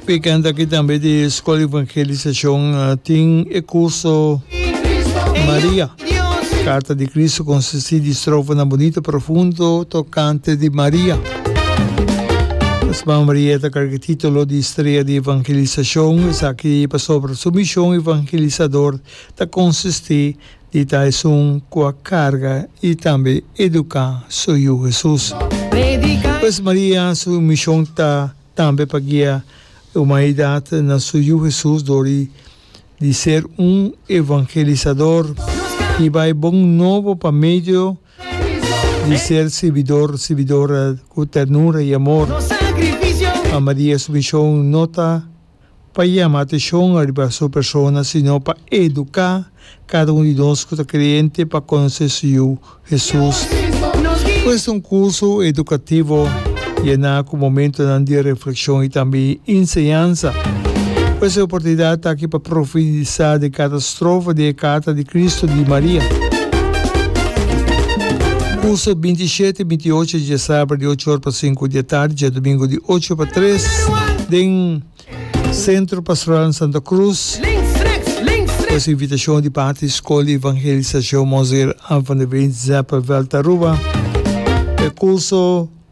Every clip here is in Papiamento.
Picanta aki tambe di School Evangelisashon tin e curso Maria, Carta di Cristo consisti di strofanan bunito, profundo, tocante di Maria. Mesma Maria ta carga titulo di Strea di Evangelisashon, esaki pasobra su mishon evangelisador ta consisti di ta esun cu a carga y tambe educa su Yu Hesus. Pues Maria su mishon ta. Tambe pa guia e humanidat na su Yu Hesus dor di di ser un evangelisador i bai bon nobo pa medio di ser sirbidor, sirbidora ku ternura i amor. Pa Maria su mishon no ta pa yama atenshon ariba su persona, sino pa eduká kada un di nos ku ta kreyente pa konosé su Yu, Hesus. Pues un kurso edukativo yená ku momentunan di reflekshon i tambe inseñansa. Pues e oportunidat ta aki pa profundisá den kada. Strofa di e Carta di Cristo di Maria. Curso e binti i shete i binti i ocho dje sabra di ocho or pa sinku di e tardi dje domingo di ocho pa tres den Centro Pastoral Santa Cruz cu es invitacion di parti di School di Evangelisacion Monseer Ann van der Veen Zeppenveld Aruba. E curso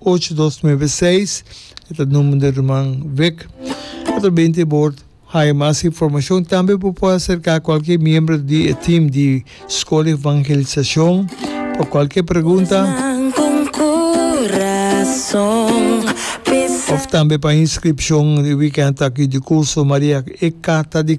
ocho dos nuebe seis e ta number di Ruman Vic. E ta bini tin bord. Haya mas informacion. Tambe bo por acerca cualkier miembro di e team di School di Evangelisacion pa cualkier pregunta of tambe pa inscripcion di weekend aki di curso Maria e Carta di.